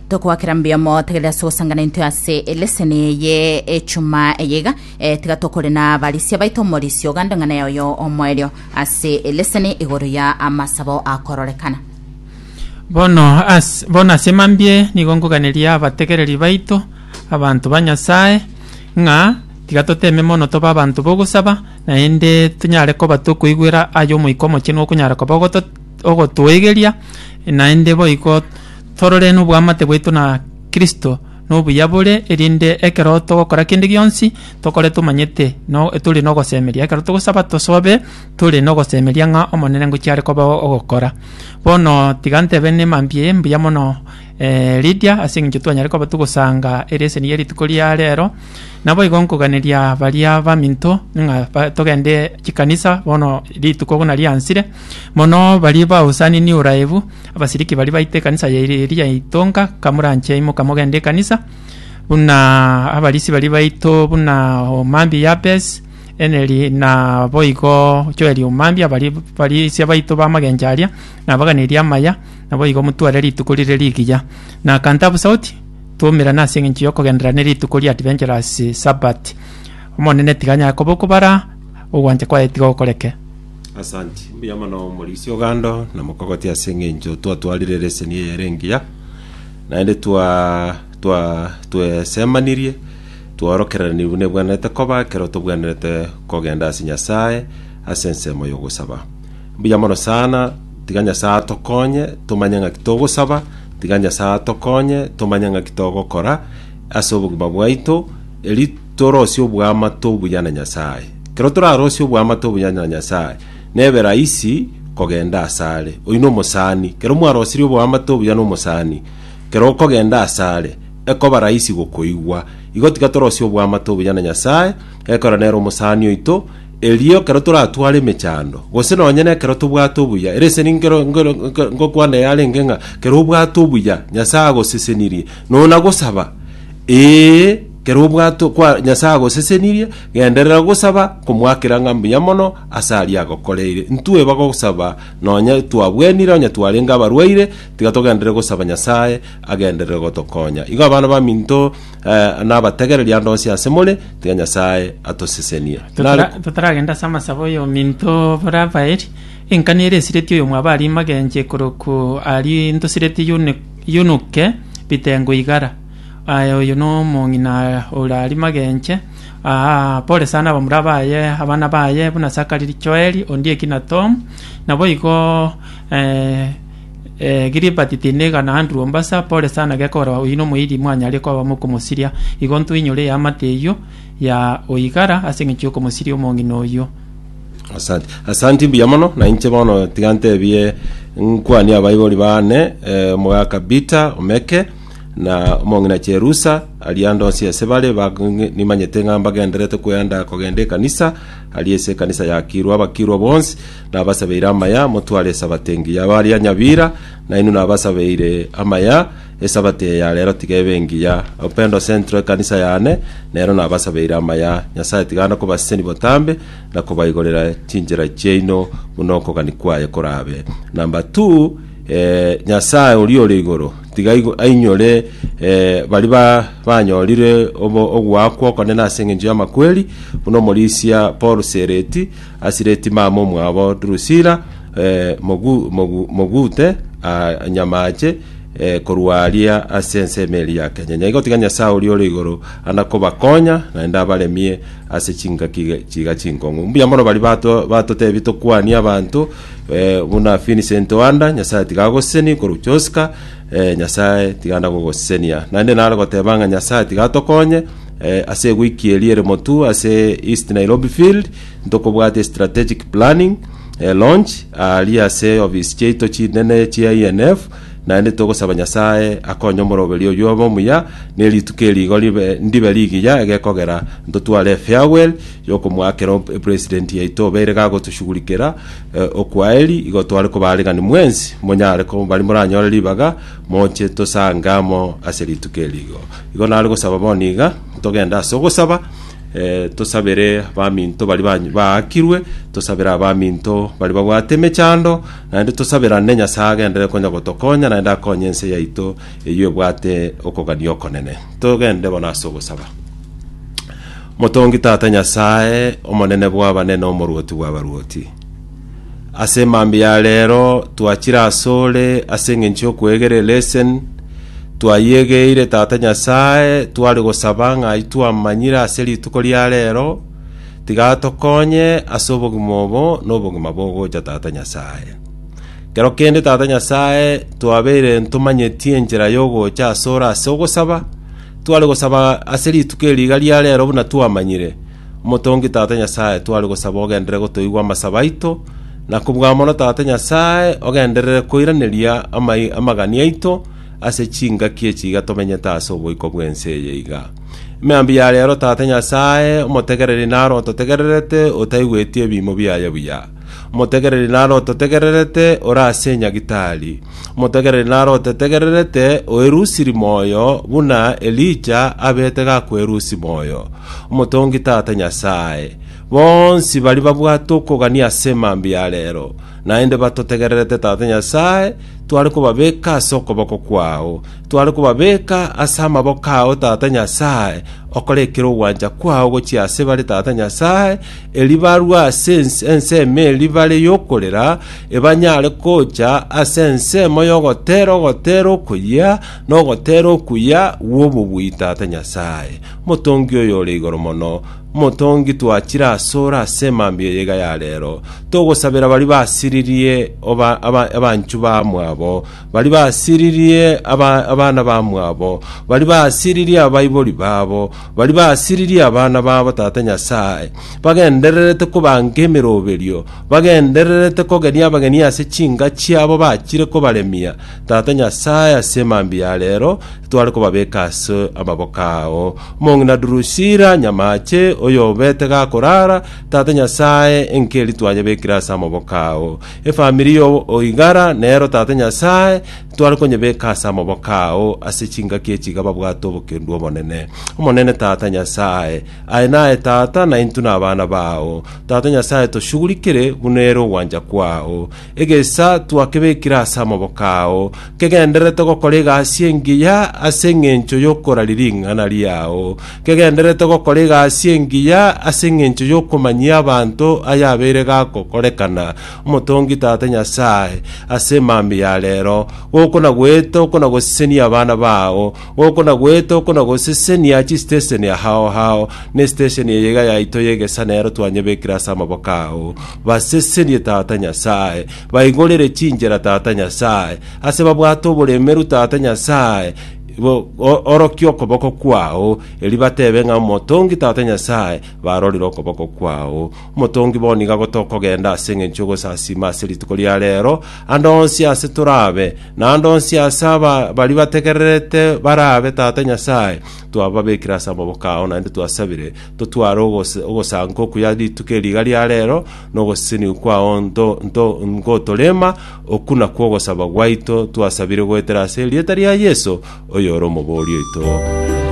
tokwakera mbuya mo tegerera ase gosangana intwe ase eleseni eye echuma eye iga eh, tiga tokore na barisia baito omorisio ogande ng'ana ya oyo omoerio ase eleseni igoro ya amasabo akororekana Bono as, bono ase mambie nigo nkoganeria abategereri baito abanto ba Nyasae ng'a tiga toteme mono tobe abanto b'ogosaba naende tonyare koba tokoigwera ayo Omoika Omochenu okonyara koba ogoto ogotoegeria, naende boigo torore noboamate bwaito na Kristo na obuya bore, erinde ekero togokora kende gionsi, tokore tomanyete no tore nogosemeria. Ekero togosaba tosobe tore nogosemeria ng'a Omonene ngochi are koba ogokora. Bono tiga ntebe ne mambia eye mbuya mono Lydia ase eng'encho twanyare koba togosanga ereseni ya rituko ria rero, naboigo nkoganeria baria baminto ng'a togende chikanisa bono rituko buna riansire. Mono baria bausani niuraebu, abasiriki baria baita ekanisa yaire eria yaitonka, kamoranche imoka mogende ekanisa, buna abarisi baria baito buna omambia Yabes, Eneri na boigo Joeli omambia, abari barisia baito bamagencho aria, nabaganerie amaya, naboigo motware rituko rire rigiya. Na kantabu sauti, twoumerane ase engencho y'okogenderera ne rituko ria Adventurous Sabbath. Omonene tiga anyare koba okobara, ogwancha kwaye tiga gokoreke. Asanti. Mbuya mono omorisia ogando na mokogoti ase eng'encho twatwarire leseni eye ere engiya naende twa twa twesemanirie twaorokereranirie buna ebwenerete koba ekero tobwenerete kogenda ase Nyasae ase ensemo y'ogosaba. Mbuya mono sana, tiga Nyasae atokonye tomanye ng'aki togosaba, tiga Nyasae atokonye tomanye ng'aki togokora, ase obogima bwaito, erio torosie oboamate obuya na Nyasae. Ekero torarosie oboamate obuya na Nyasae, nebe rahisi kogenda asare. Oyio na omosani, ekero mwarosirie oboamate obuya na omosani, ekero okogenda asare, ekoba rahisi gokoigwa. Igo tiga torosie oboamate obuya na Nyasae, ekero nere omosani oito, erio ekero toratware emechando, gose nonye na ekero tobwate obuya. Ere ase ninkero nkero nkero nkokwana eyarenge ng'a, ekero obwate obuya, Nyasae agosesenirie. Nonya gosaba, ee, kera obwato kwa Nyasae agosesenirie, genderera gosaba komoakera ng'a mbuya mono ase aria agokoreire. Ntweba gosaba nonya twabwenire, onye twarenge abarwaire, tiga togenderere gosaba Nyasae agenderere gotokonya. Igo abana baminto eh, nabategereri ande onsi ase more, tiga Nyasae atosesenie. Nare Totara- totaragenda ase amasabo y'ominto bora baeri, engani ere esireti oyo mwaba aria magenche korokwo aria ntosiretie Yuniko, Yunuke, bitengo igara. Aye oyo nomong'ina ore aria magenche, aa, pore sana abamura baye, abana baye, buna Sakari, Joeli, Ondieki na Tom, naboigo eh, eh, Gilibati Tiniga na Andrew Ombasa, pore sana gekorwa oyio nomoiri mwanyare koba mokomosiria, igo ntoinyore eamate eyio ya oigara as'eng'encho y'okomosiria omong'ina oyio. Asante. Asanti mbuya mono na inche bono tiga ntebie nkwanie abaibori bane eh, omogaka Bita Omeke na omong'ina Cherusa ari ande onsi ase bare ba- ng- nimanyete ng'a mbagenderete kwenda kogenda ekanisa ari ase ekanisa yakirwa abakirwa bonsi nabasabeire amaya motware esabato engiya bari anyabira nainwe nabasabeire amaya Esabato eye ya rero tiga ebe engiya. Upendo Central ekanisa yane, nero nabasabeire amaya. Nyasae tiga ande kobaseseni botambe, na kobaigorera chinchera chiaino buna okogani kwaye korabe. Number two, eh, Nyasae oria ore igoro, tiga aigo- ainyore eh, bari ba banyorire obo- ogoakwa okonene ase engencho y'amakweri, buna omorisia Paul Sereti, Asireti mama omwabo Drusila, eh, Mogu- Mogu- Mogute, ah, Nyamache, Eh, korwa aria ase ensemo eri ya Kenya, nyaigotiga Nyasae oria ore igoro anakobakonya, naende abaremie ase chingaki ge- chiga chinkong'u. Mbuya mono bari bato batotebi tokwanie abanto eh, buna Vincent Oanda, Nyasae tiga agoseseni korwa Joska, eh, Nyasae tiga anda gogosesenia. Naende nare goteba ng'a Nyasae tiga atokonye eh, ase eguiki eri ere Motu ase East Nairobi Field, Ntokobwate strategic planning, launch, aaria ase ofisi chiaito chinene chia ENF, naende togosaba Nyasae akonye omoroberi oyio obe omuya, ne rituko eri igo ribe ndibe rigiya egekogera ntotware efarewell yokomoakera o president yaito obeire gagotoshugurikera okwaheri igo tware koba aregani mwensi monyare ko bari moranyore ribaga moche tosange amo ase rituko eri igo igo nare gosaba bono iga togende ase ogosaba Eh, tosabere baminto bari ba- baakirwe tosabere abaminto bari babwate emechando naende tosaberane nyasae agenderere konya gotokonya naende akonye ense yaito eyio ebwate okogania okonene togende bono ase ogosaba motongi tata nyasae omonene bw'abanene omorwoti bw'abarwoti Ase mambia ya reero twachire asore ase engencho y'okwegera elesen, twayegeire Tata Nyasae tware gosaba ng'a itwamanyire ase rituko ria reero, tiga atokonye ase obogima obo na obogima bogocha Tata Nyasae. Kero kende Tata Nyasae twabeire ntomanyeti enchera y'ogocha asore ase ogosaba, tware gosaba ase rituko eri iga ria reero buna twamanyire, Omotongi Tata Nyasae, tware gosaba ogenderere gotoigwa amasabo aito, na kobua mono Tata Nyasae, ogenderere koiraneria amai- amagani aito ase chingaki echi iga tomenyete ase oboiko bw'ense eye iga. Mambia ya reero, Tata Nyasae, omotegereri naro ototegererete, otaigweti ebiimo biaye buya. Omotegereri nare ototegererete ore ase Nyagitari. Omotegereri nare otetegererete oerusiri moyo, buna Elija abete gakwerusia moyo. Omotongi Tata Nyasae, bonsi baria babwate okogania ase mambia ya reero, naende batotegererete Tata Nyasae, tware kobabeka ase okoboko kwao. Tware kobabeka ase amaboko ao Tata Nyasae, okore ekero ogwancha kwao gochia ase bare Tata Nyasae, Erio barue ase ense ensemo eria bare y'okorera, ebanyare gocha ase ensemo y'ogoteera ogoteera okoyia, na ogoteera okuya gw'obobui Tata Nyasae, Omotongi Oyore Igoro Mono, Omotongi twachire asore ase mambia eyaiga ya reero, togosabera baria basiririe oba, aba, abanchwa bamwabo, baria basiririe aba, abana bamwabo, baria basiririe abaibori babo, Baria basiririe abana babo Tata Nyasae, bagendererete kobanka emeroberio, bagendererete kogeria abageni ase chinka chiabo bachire kobaremia, Tata Nyasae, ase mambia ya reero tware kobabeka ase amaboko ao. Omong'ina Durusira, nyamaache, oyobete gakorara, Tata Nyasae, enkeri twanyebekire ase amaboko ao. Efamiri y'Oigara nero, Tata Nyasae, Tware konyebeka ase amaboko ao ase chingaki echi iga babwate obokendu obonene. Omonene Tata Nyasae, aye naye Tata, na intwe nabana bao. Tata Nyasae, toshugurikire buna ere ogwancha kwao. Egesa twakebekire ase amaboko ao, kegendererete gokora egasi engiya ase engencho yokoraria ring'ana riao, kegendererete gokora egasi engiya ase engencho yokomanyia abanto ayabeire gakokorekana, Omotongi Tata Nyasae, ase emambia ya reero, gokonagwete okonagosesenia abana bao, gokonagwete okonagosesenia chisitesheni hao hao, na esitesheni eye iga yaito y'egesanero twanyebekire ase amaboko ao. Basesenie, Tata Nyasae, baigorere chinchera, Tata Nyasae, ase babwate oboremeru, Tata Nyasae, bo- o- orokie okoboko kwao, eri batebe ng'a Omotongi Tata Nyasae barorire okoboko kwao. Motongi bo nigo ago tokogenda ase engencho y'ogosasiima ase rituko ria reero, ande onsi aase torabe, na ande onsi aase aba baria bategererete barabe Tata Nyasae, twababekire ase amaboko ao, naende twasabire, totware ogose- ogosanka okuya rituko eri iga ria reero, na ogoseseniwa kwao nto nto ngotorema, okwo nakwo ogosaba gwaito twasabire goetera ase erieta ria Yeso, oyore omobori oito.